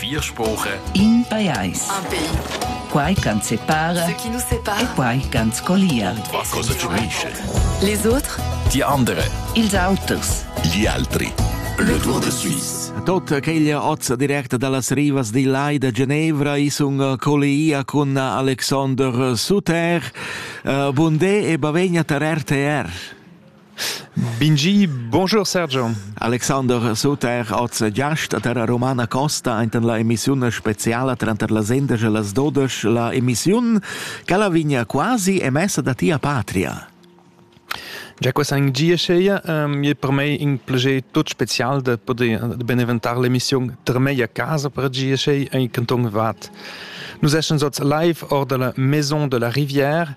Vier spoche. In pajais. Un pays. Quai ch'ans separa. Ce qui nous sépare. E quai ch'ans collia. Va cosa ci unisce. Les autres. Die andere. Ils auters. Gli altri. Le Tour de Suisse. Tot aquella ozza directa dallas rivas di Lai da Genevra i sun collia cun Alexander Suter. Uh, bundé e bavegna tar RTR. Bingi, bonjour Sergio. Alexander Suter, oz giast a Terra Romana Costa enten la emissiun speciala tranter las endesch e las dodesch. La emissiun quella vigna quasi emessa da tia patria. Già questa in Giescheia ähm, è per me un piacere tutto speciale de poter beneventare l'emissione tra me a casa per Gieschei e in canton Vad. Nous escens oz live hors de la Maison de la Rivière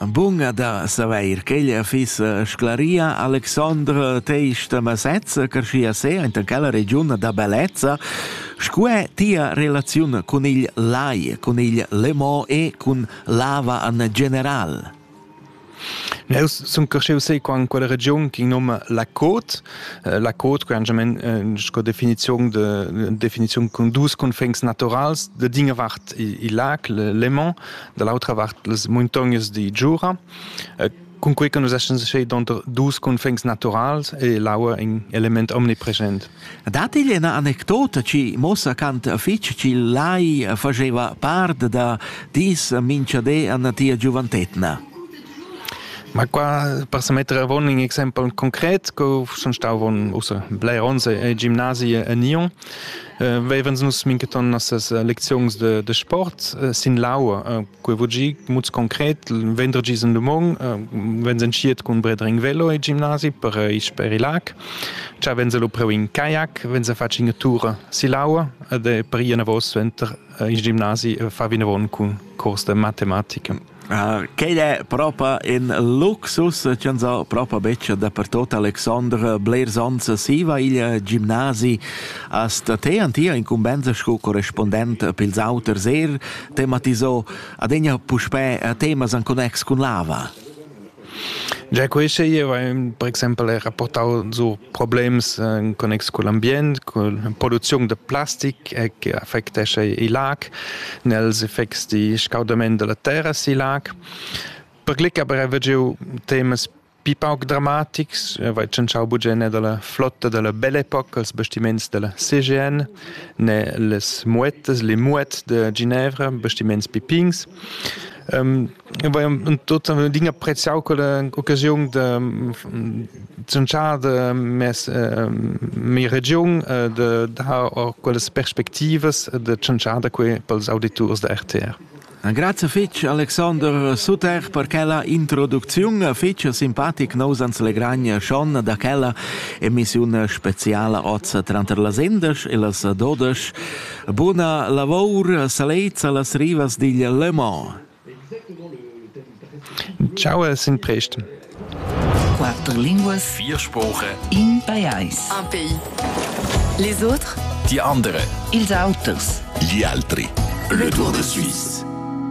Bun da savair ch'ella fiss sclaria Alexandra teista masezza carschia se enta quella regiun da bellezza scu è tia relaziun cun il lai, cun il Lemont e cun lava an general? Eu sun carscheu sei qua in quella regiun chi noma la Côte. Eh, la Côte que angiament eh, sco definiziun de definiziun cun dus cunfegns naturals de dinge vart il, il lac le Lemont da l'autra vart las muntognas di Giura, eh, cun quei che nus essens sche donter dus cunfins naturals e l'aua in element omnipresent. Dat igl ina anecdota ci mossa cant fitg ci lai faceva part da dis minchadé a tia giuventetna? Ma qua per se mettere a un exempel concret, che sono stato usa blei onze e gimnasie a Nyon, Vevens nus mincheton nossas lecziuns de, de sport sin l'aua. Quei vul gi muts concret, vendredi in dumong, vens entschiet cun bredring velo e gimnasi per isch per il lag. Cha vens lu preu in kayak, vens a faci ina tura sill'aua ed per ir anavos venter il gimnasi fa vinavon cun curs de matematica. Quei è propa in luxus ch'ins ha propa betg dapertut. Alexandre, blers onns siva il gimnasi a Statè an tia incumbensa sco correspondent pils auters er tematisò adegna puspè temas en connex cun l'ava. Gia queste ier avevamo per exempel era portau giu problems in connex cugl ambient, cun producziun da plastic e che affectescha il lag, nels effects di scaudament dalla terra sil lag. Per glic aber haveva giu temas pi pauc dramatics, vai tschintschau bugen ne dalla flotta dalla Belle-Époque als bastiments dalla CGN, ne las Muettas, le Muet de Ginevra, bastiments pipins. Ähm, tut din appreziau quella occasiun da zunciar da mes äh, mia regiun äh, da dar quellas perspectivas da zunciar da quei pels auditurs da RTR. Grazie fitch Alexander Suter per quella introduzione fitch simpatic nous ans legragna schon da quella emissione speziale oz tranter las indes e las dodes Buna lavor salezza las rivas digl Le Mans. Ciao e sin presto. Quattro linguas, vier Sprache. In pajais. Un pays. Les autres? Die andere. Ils auters. Gli altri. Le Tour de Suisse.